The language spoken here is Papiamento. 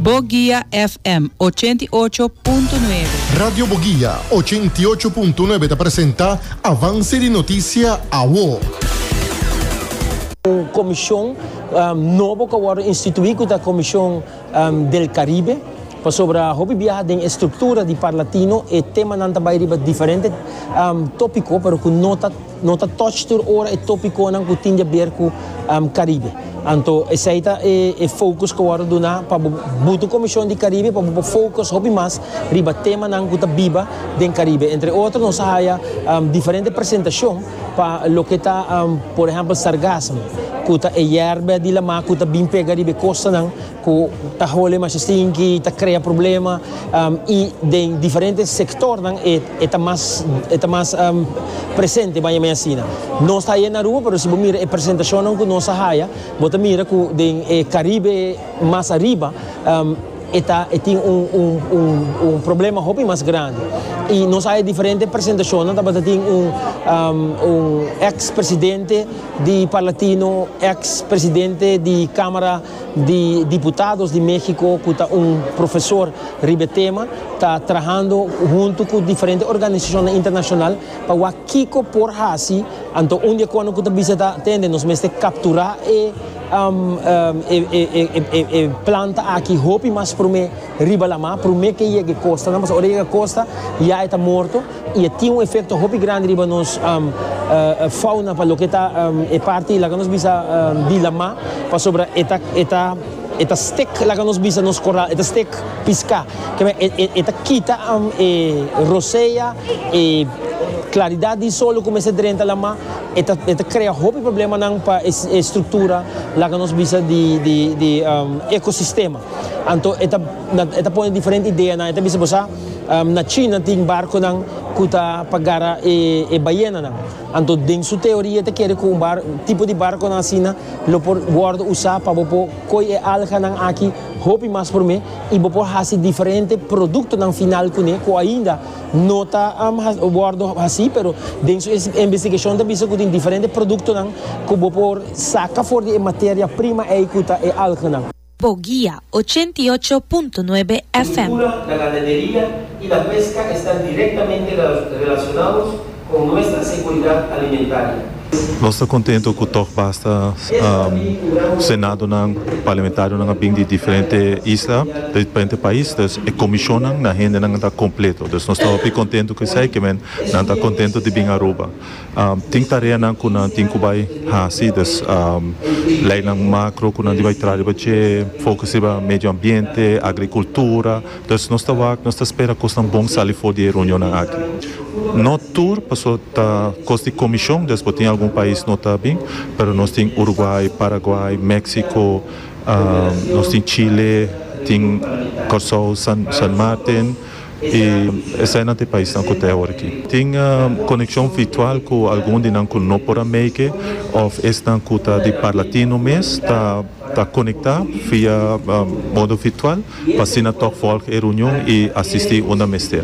Boguia FM ochenta i ocho punto nuebe. Radio Boguia ochenta i ocho punto nuebe ta presenta Avance di Noticia Awo. Un comision nobo cu a wordo institui cu ta Comision del Caribe pasobra hopi biaha den e structura di Parlatino e temanan ta bay riba diferente topico pero cu no ta No ta touch tur ora e topiconan cu tin jaber cu Caribe. Anto esey ta e focus cu wordo duna pa bo butu Comision di Caribe pa bo por focus hopi mas riba temanan cu ta biba den Caribe. Entre otro nos a haya diferente presentacion pa loke ta por ehempel sargassum cu ta e yerba di la mar cu ta bin pega riba e costanan cu ta hole masha stinki, ta crea problema y den diferente sectornan e ta mas e ta mas presente maya maya asina. Nos ta haya en Aruba pero si bo mira e presentacionnan cu nos a haya bo ta mira cu den e Caribe mas ariba e ta e tin un un un un problema hopi mas grandi y nos a haya diferente presentacionnan tabata tin un un ex presidente di Parlatino ex presidente di camara di diputados di Mexico cu ta un profesor riba e tema ta trahando hunto cu diferente organisacionnan internacional pa wak kico por haci, anto un di e cono cu ta bisa ta tende nos mester captura e planta aki hopi mas prome. Riba lamá, promé ke yega e kostanan, pasobra ora e yega kosta, ya e ta morto, i e tin un efekto hopi grandi riba nos fauna pa loke ta e parti laga nos bisa di lamá, pasobra e ta e ta e ta stik laga nos bisa nos koral, e ta stik piská, keme e e ta kita e rosea, e klaridat di sol lo ku mester drenta lamá, e ta e ta krea hopi problemanan pa e struktura laga nos bisa di di di ekosistema. Anto e ta e ta pone diferente ideanan. E ta bisa bo sa, na China tin barconan cu ta pa gara e e bayenanan. Anto den su teoria e ta kere cu un bar tipo di barconan asina lo por wordo usa pa bo por coy e alganan aki hopi mas prome y bo por haci diferente productonan final cune cu ainda no ta wordo haci pero den su investigacion ta bisa cu tin diferente productonan cu bo por saca for di e materia prima ey cu ta e alganan. Bogia, ochenta i ocho punto nuebe FM. Cultura, la ganaderia y la pesca esta directamente relacionados con nuestra seguridad alimentaria. Nos ta contento cu toch basta Senadonan, Parlamentarionan a bin di diferente isla, di diferente pais, dus e comisionnan na hendenan ta completo. Dus nos ta hopi contento cu esey, kimen nan ta contento di bin Aruba. Tin tareanan ku nan tin ku bai hasi, dus leinan makro ku nan di bai traha riba dje, fokus riba medio ambiente, agrikultura, dus nos ta wak, nos ta spera kosnan bon sali for di e reunionnan aki. No tur, paso ta kos di komishon, dus bo tin algun pais no ta bin, pero nos tin Uruguay, Paraguay, Mexico, nos tin Chile, tin Kòrsou, San Martin. I esei nan ta e paisnan ku ta e hora aki. Tin konekshon virtual ku algun di nan ku no por a meike òf esnan ku ta di parla tino mes ta ta konektá via modo virtual pa asina tòg vòlg e reunion i asistí unda mester.